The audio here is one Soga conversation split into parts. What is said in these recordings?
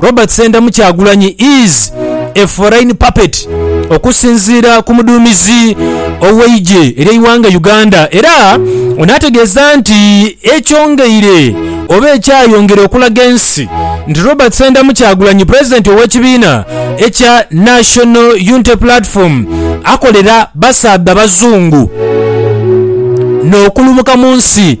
Robert Sendamu Kyagulanyi is a foreign puppet okusinziira ku muduumizi ow'eigye ery'eighanga Uganda era ono ategeeza nti ekyongeire oba ekyayongera okulaga ensi nti Robert Sendamu Kyagulanyi pulezidenti ow'ekibiina ekya National Unity Platform akolera basaadha bazungu n'okulumuka mu nsi.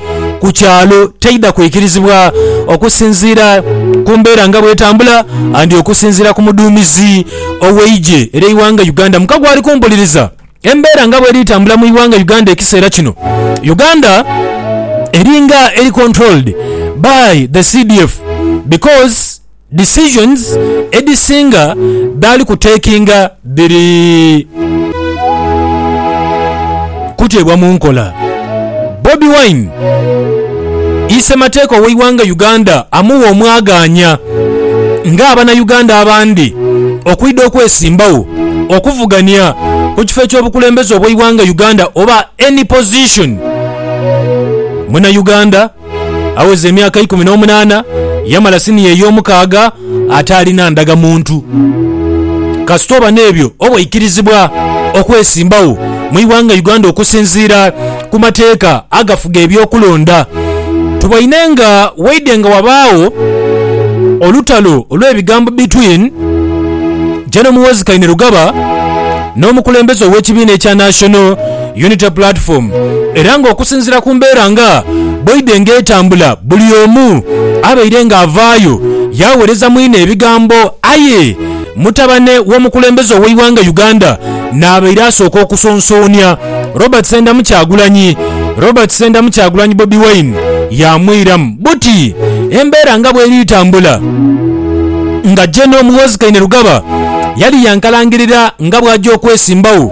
ku kyalo teidha kwikirizibwa okusinziira ku mbeera nga bwetambula and okusinziira ku muduumizi ow'eigye ery'eighanga Uganda Mukagwa ali kumpuliriza. Embeera nga bweri tambula mu ighanga Uganda ekiseera kino, Uganda eringa eri controlled by the CDF because. Decisions edhisinga dhaali ku takinga dhiri kuteebwa mu nkola. Bobi Wine isemateeka ow'eighanga Uganda amugha omwagaanya nga abana Uganda abandi okwidha okwesimbagho okuvugania ku kifo eky'obukulembeze obw'eighanga Uganda oba any position muna Uganda Agheza emyaka ikumi n'omunaana, yamala siniya ey'omukaaga ataalina ndagamuntu. Kasita oba n'ebyo obwaikirizibwa okwesimbagho mu ighanga Uganda okusinziira ku mateeka agafuga eby'okulonda. Tuboine nga waidhe nga wabaagho olutalo olw'ebigambo between General Muhoozi Kainerugaba n'omukulembeze ow'ekibiina ekya National Unity Platform era nga okusinzira ku mbeera nga bweidhe nga etambula buli omu abaire nga avaayo yaawereza mwine ebigambo aye mutabane w'omukulembeze ow'eighanga Uganda naabaire asooka okusonsoonia Robert Ssendamu Kyagulanyi Robert Ssendamu Kyagulanyi Bobi Wine yaamwiramu buti embeera nga bweri tambula nga General Muhoozi Kainerugaba yali yankalangirira nga bwaja okwesimbawo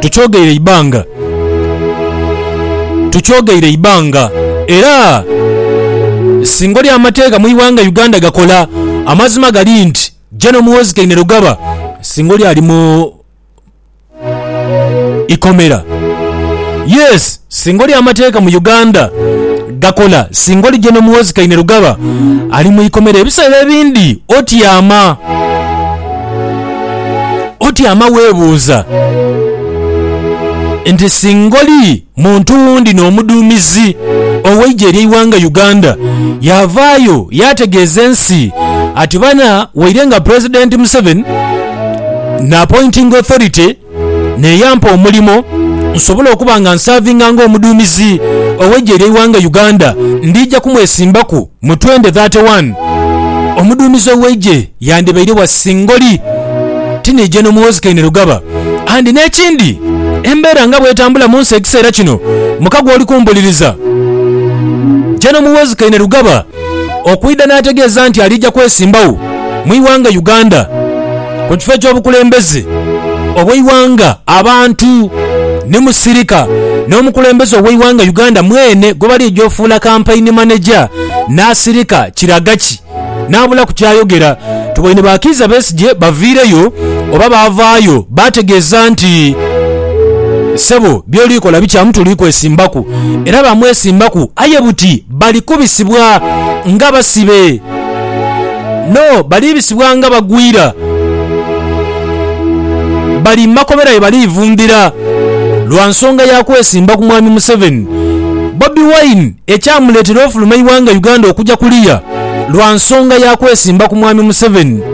Tukyogeire eibanga, tukyogeire eibanga era singa oli amateeka mu ighanga Uganda gakola, amazima gali nti General Muhoozi Kainerugaba singa oli ali mu ikomera. Yes! Singa oli amateeka mu Uganda gakola, singa oli General Muhoozi Kainerugaba ali mu ikomera ebiseera ebindi otyama. Otyama weebuuza nti singa oli muntu wundi n'omuduumizi ow'eigye ery'eighanga Uganda yaavaayo yaategeeza ensi ati bana waire nga Pulezidenti Museveni naapointinga authority n'eyampa omulimo nsobole okuba nga nsaavinga ng'omuduumizi ow'eggye ly'eighanga Uganda, ndija kumwesimbaku mu twende dhate wani. Omuduumizi ow'eigye yandibaire wa singoli, ti ni Gen Muhoozi Kainerugaba. Andi n'ekindi, embeera nga bw'etambula mu nsi ekiseera kino, mukago oli kumbuliriza, Gen Muhoozi Kainerugaba okwidha n'ategeeza nti aliija kwesimbawo mu ighanga Uganda ku kifo eky'obukulembeze obw'eighanga. Abantu ni Musirika n'omukulembeze ow'eighanga Uganda mwene gwebaliija ofuula Kampaini Maneja, Nasirika Kiragaki n'abulaku ky'ayogera. Tuboine ba Kiiza Besigye baviireyo oba baavaayo baategeeza nti, Ssebo by'oli kola bikyamu tuli kwesimbaku era baamwesimbaku aye buti. Bali kubisibwa nga basibe. No, baliibisibwa nga bagwira. Bali mu makobera ye baliivundhira lwa nsonga ya kwesimba ku Mwami Museveni. Bobi Wine ekyamuleetera ofuluma eighanga Uganda okuja kuliya lwa nsonga ya kwesimba ku Mwami Museveni.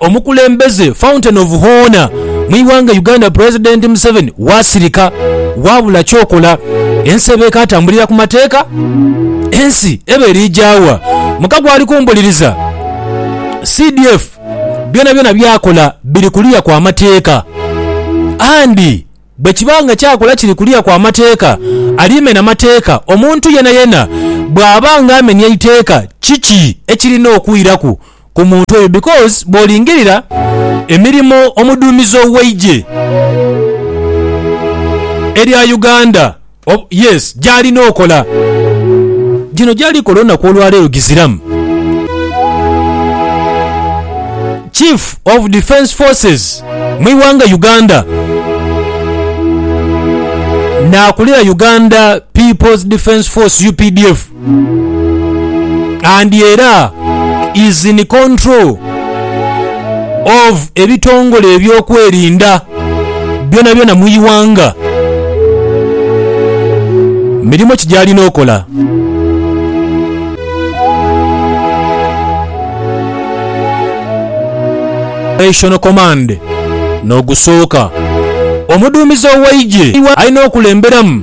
Omukulembeze Fountain of Hoona mu ighanga Uganda President Museveni wasirika wabula kyokola ensi eba ekatambulira ku mateeka? Ensi eba erija wa? Muka gwali kumbuliriza? CDF byonabyona byakola biri kuliya kwa mateeka and Bwe kiba nga ky'akola kiri kuliya kwa mateeka, alimena mateeka. Omuntu yenayena bw'aba nga amenya eiteeka, kiki ekirina okwiraku ku muntu oyo? Because bw'olingirira emirimo omuduumizi ow'eigye erya Uganda, Oba, yes, gy'alina okola. Gino gy'ali kola olunaku olwa leero giziramu. Chief of Defence Forces mu ighanga Uganda, n'akulira Uganda People's Defence Force, updf. and era is in control of ebitongole ebyokwerinda byona byona mwighanga mirimo ki gyalina okola? Operational command nogusooka omuduumizi oweigye alina okulemberamu.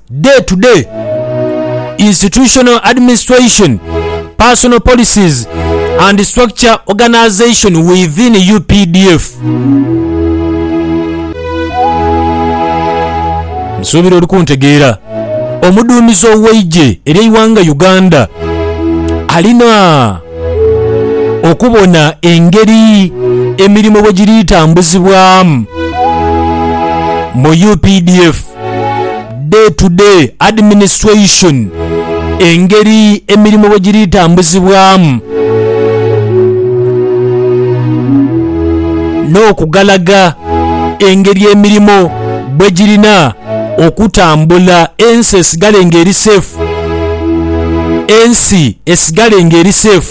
Day to day, Institutional Administration, Personal Policies and Structure Organisation within updf. Nsuubira oli kuntegeera. Omuduumizi ow'eigye ery'eighanga Uganda alina okubona engeri emirimo bwe giri tambuzibwamu mu updf. Day to Day Administration, engeri emirimu bwe giri tambuzibwamu n'okugalaga engeri emirimu bwe girina okutambula ensi esigale ng'eri safe ensi esigale ng'eri safe.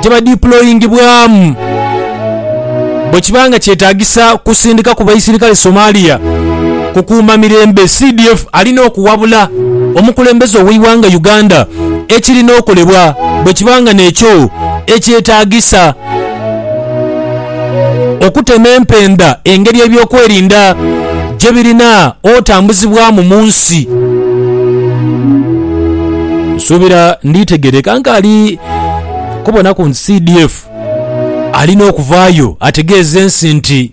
gye badiployingibwamu bwe kiba nga kyetaagisa kusindika ku baisirikale Somalia kukuuma mirembe, CDF alina okuwabula omukulembeze ow'eighanga Uganda ekirina okolebwa bwe kiba nga n'ekyo ekyetaagisa. Okutema empenda engeri eby'okwerinda gye birina otambuzibwamu mu nsi. Nsuubira nditegeereka nkaali kubonaku nti CDF alina okuvaayo ategeeze ensi nti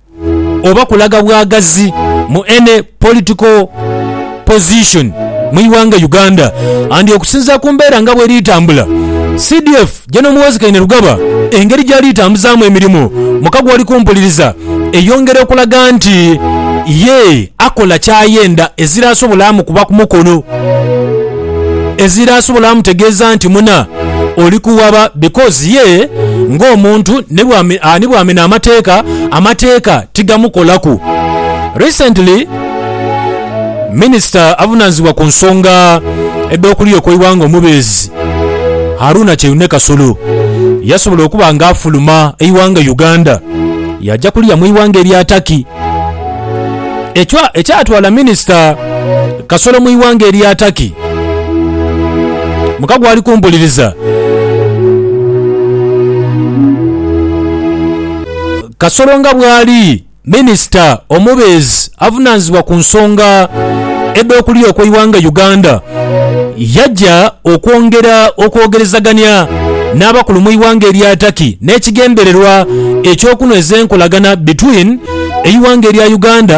oba kulaga bwagazi mu any political position mu ighanga Uganda and okusinzira ku mbeera nga bweri tambula CDF General Muhoozi Kainerugaba engeri gyali tambuzamu emirimu muka gwali kumpuliriza eyongera okulaga nti ye akola kyayenda ezira asobola amukuba kumukono. Ezira asobola amutegeeza nti muna oli kuwaba because ye ng'omuntu ni bw'amena amateeka, amateeka tigamukolaku. Recently, Minisita avunaanyizibwa ku nsonga edh'okuliyo kw'eighanga omubeezi Haruna Kyeyune Kasolo yasobola okuba nga afuluma eighanga Uganda yaaja kuliya mu ighanga erya Turkey. ekyatwala minisita Kasolo mu ighanga erya Turkey mukago ali kumpuliriza. Kasolo nga bwali minisita omubeezi avunaanyizibwa ku nsonga edh'okulya okw'eighanga Uganda. Yaja okwongera okwogerezagania n'abakulu mu ighanga erya Turkey n'ekigendererwa eky'okunhweza enkolagana between eighanga erya Uganda